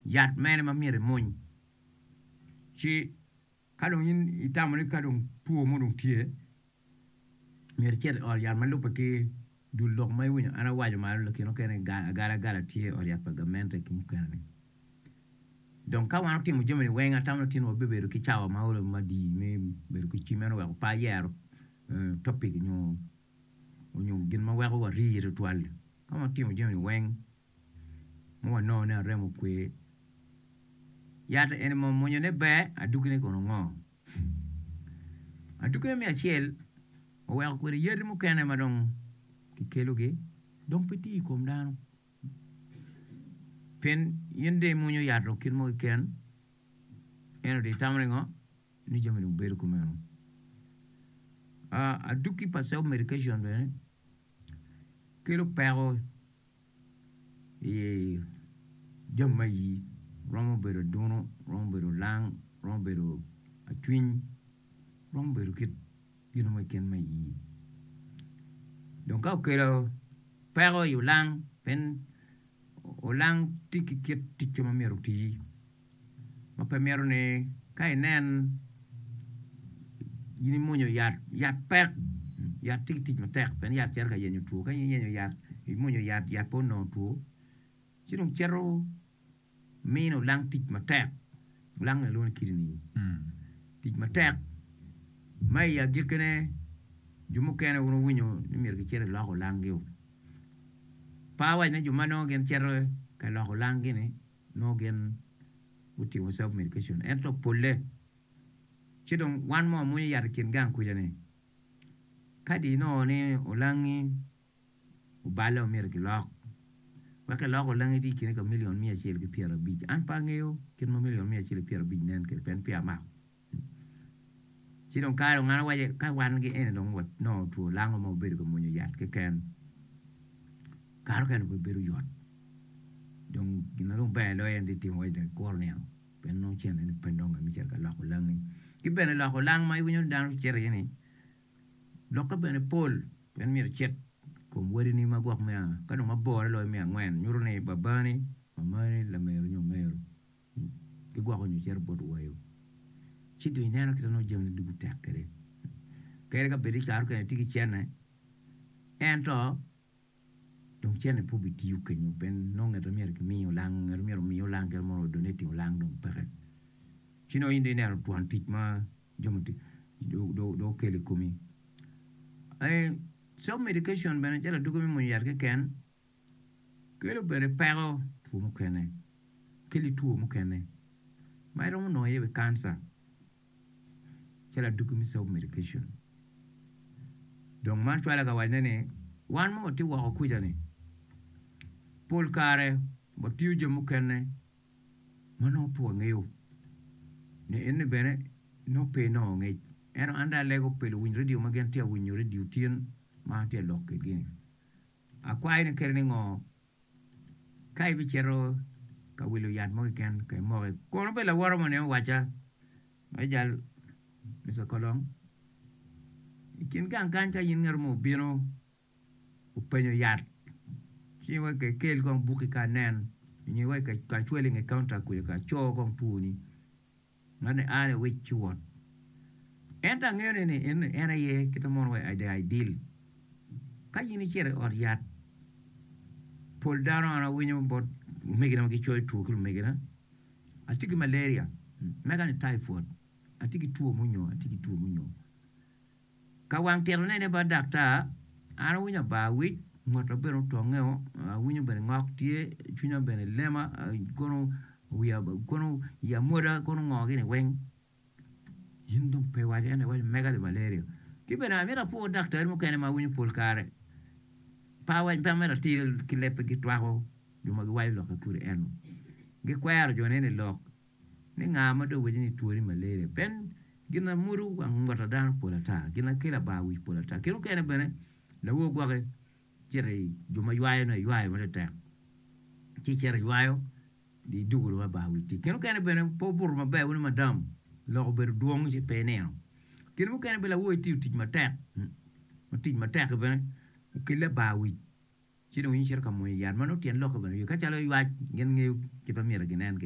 Yat mene ma myero imuny? Ci ka dong in itamo ni ka dong two mo dong tye, myero icit i ot yat ma lubbe ki dul lok ma iwinyo an awaco malo lakin okene agalagala tye i ot yat pa gamente ki mukene-ni. Dong ka wan otimo jami-ni weng atamo ni otino wabibedo ki cawa ma oromo madi me bedo ki cim ento wek opa yero topic nyo gin ma weko wari tutwal-li. Ka watimo jami-ni weng ma wanongo ni arem okwe. Yat eni ma munyone ber, adugine kono ngo? Adugine me acel, waweko kwede yadi mukene ma dong kikelogi dong pe tiyo i kom dano. Pien in dong imwonyo yat dong kit mo keken, ento dong itamo ni ngo? Ni jami dong bedo kumeno. Aduki pa self medication bene kelo peko. jami me ayii romo bedo adunu, romo bedo olang, romo bedo acwiny, romo bedo kit gin mo keken me ayii dong ka okelo peko i olang pien olang tye ki kit ticce ma myero otii. ma pe mito ni ka inen in imuonyo yat yat pek yat tye ki tic matek pien yat cito ka yenyo two ka in iyenyo yat imuonyo yat yat pe onongo two ci dong cito mino lang tic matek lang gin ma kilwongo ni kidini tic matek ma i agikkine jo mukene wun wuwinyo ni myero gicit ilok olangi-u par wacine jo ma nongo gicito ka loko olangi-ni. nongo gin gutimo self medication ento polle ci dong wan ma wamwonyo yat i kin gang kwica ni kadi nongo ni olangi oballe ma myero ki lok wek ki lok olangi tye i kine ka million miya acel ki pyera abic an pe angeyo kit ma million miya acel ki pyera abic nen kwede pien peya amako. Ci dong kare dong an awaco ka wan ki en dong nongo two lango ma wabedo ka mwonyo yat keken kare mukene pe bedo yot dong gin ma dong ber loyo en ti timo waci dong ikuru nino pien nongo ceng meno pe nonge me cito ka loko langi ki bene loko lang ma iwinyo ni dano gicito iye ni lokke bene pol pien myero icit i kom wadini ma gwok me a ka dong mabore loyo me angwen nyutu ni babani, mamani, lamego nyo omeru gigwoko nyo cito bot wayo, ci dong ineno kit ma nongo jamine ducu tek kwede. Kadi ka bed ni i kare mukene itye ki cente, ento dong cente pe obitiyo kenyu pien nongo ngat ma myero kimi olang, ngat ma myero omi olang kit ma donating olang dong peke. Ci dong in dong ineno twon tic ma jo mutii dong okelo i komi. Self medication bene calo aduki me mwonyo yat keken. Kelo bene peko two mukene keli two mukene ma iromo nongo iye bene cancer calo aduki me self medication dong man cwale ka wacone ni wan ma watye woko kuca ni pol kare watiyo jami mukene ma nongo pe wangeyo ni eni bene nongo pe inongo ngec ento an dong alego pi luwiny radio ma gin tye awinyo radio tyen ma an tye alok kigi ni Akwayo ni kele ni ngo ka ibicito ka wilo yat mo keken ka imoke kono be laworo mo ne owaca me jal Mister Kolong ikin gang kany ka in ngato mo obino openyo yat ci wek ka ikel kong buki ka nen nyo wek ka cwalo inge kaunta kuca ka co kong two ni. Man en aye wec ci wot. Ento angeyo ni ni en en aye kite mono wa the ideal. Ka in icito i ot yat, pol dano an awinyo bot omegina ma gicoyo two ki lumegina, atye ki malaria, mega ni typhoid, atye ki two munyo, atye ki two munyo. Ka wang tito nene bot daktar, an awinyo aba awic, ngota bene otongeo, awinyo bene ngok tye, cwinya bene lema, kono wiya kono iya mwada kono ngo gini weng. In dong pe iwaco ento iwaco mega li malaria. Ki bene amito apwor daktari mukene ma awinyo pol kare pe amito ati ki lebbe gitwako jo ma giwaco lokke kodi ento gikwero jo nene lok Me nga ma dong wacci ni twoni malaria pien gin ma mudo wang bot dano pol ata, gin ma kelo abar wic pol ata. Kit mukene bene lawo gwoki cito i jo ma ywayo nongo eywayo matetek ci cito eywayo i dukulu ma bar wic tye. Kit mukene bene pe obuto maber wano madam lok obedo dwong ci pe inino. Kit mukene bene lawo itiyo tic matek ma tic matek-ki bene okelle abar wic ci dong in icito ka mwonyo yat ma nongo tyen lokke bene wiye ka calo ywac gin ngeyo kit ma myero ginen kwede.